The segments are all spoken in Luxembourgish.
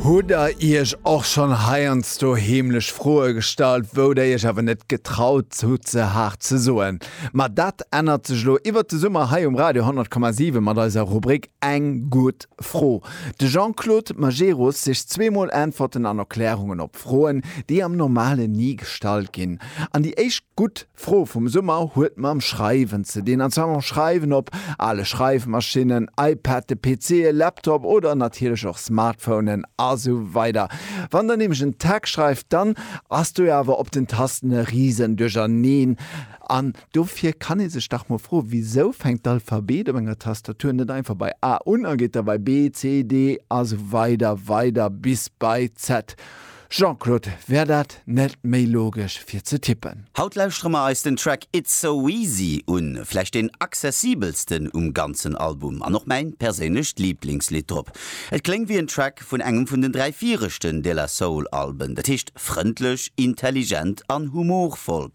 Hutt der iech och schonn heiansdo heemlech Froe gestallt, wou der iech awer net getraut hutt se haart ze soen? Ma dat ännert sech elo iwwert de Summer hei um Radio 100,7 mat eiser Rubrik Eng gutt Fro. De Jean-Claude Majerus sicht zweemol Äntwerten an Erklärungen op Froen, déi am Normale ni gestallt ginn. An déi éischt gutt D'Fro vum Summer huet mam Schreiwen ze dinn, an zwar mam Schreiwen op ale Schreifmaschinnen, iPad, de PC, e Laptop oder natierlech och Smartphonen a sou weider. Wann der nämlech en Text schreift, dann ass do jo awer op den Tasten e risen Duercherneen. An dofir kann ee sech dach mol froen, Wisou fänkt d'Alphabet op enger Tastatur net einfach bei A un a geet da bei B, C, D a sou weider weider bis bei Z? Jean-Claude, wär dat net méi logesch fir ze tippen? Haut lauschtere mer eis den Track It's So Easy un, vläicht deen accessibelsten um ganzen Album an och mäin perséinlecht Lieblingslidd drop. Et kléngt wéi en Track vun engem vun den dräi viregten De La Soul Alben, dat heescht frëndlech, intelligent an humorvoll.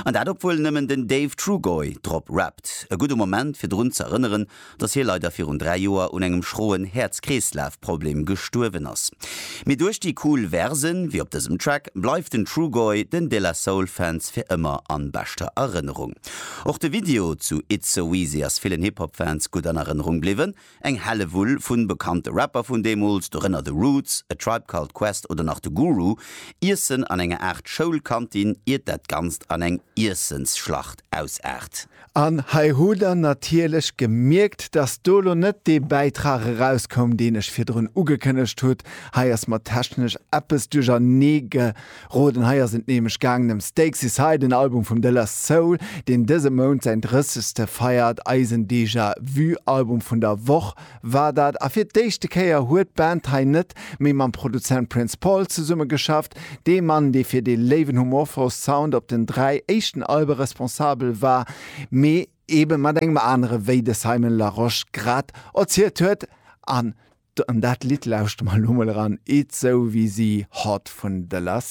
An dat obwuel nëmmen den Dave Trugoy drop rappt. E gudde Moment fir drun z'erënneren dass hie leider virun dräi Joer un engem schroen Häerzkreeslafproblem gestuerwen ass. Mee duerch déi cool Versen, wéi op dësem Track, bleift den Trugoy den De La Soul Fans fir ëmmer an beschter Erënnerung. Och de Video zu It's So Easy ass villen Hip Hop Fans gutt an Erënnerung bliwwen. Eng Hellewull vun bekannte Rapper vun deemools, dorënner The Roots, A Tribe Called Quest oder nach de Guru, iessen an enger Aart Schoulkantin, iert dat Ganzt an eng Iessensschlacht ausaart. An hei hutt Der natierlech gemierkt, dass do elo net dee Bäitrag erauskoum, deen ech virdrun ugekënnegt hutt. Hei ass mer technesch eppes duercherneegeroden. Hei ass et nämlech gaangen ëm Stakes Aside, en Album vum De La Soul, deen dëse Mount säin drëssegste feiert, eisen Déjà-vu-Album vun der Woch. war dat a fir d'éischte Kéier huet d'Band hei net méi mam Produzent Prince Paul zesumme geschafft, dee Mann, dee fir dee léiwen humorvoll Sound op den dräi éischten Albe responsabel war, mee ebe mat engem anere wéi de Simon Larosche grad erzielt huet. An dat Lidd lauschtere mer elo mol eran, It's So Easy, Hot vun The Last.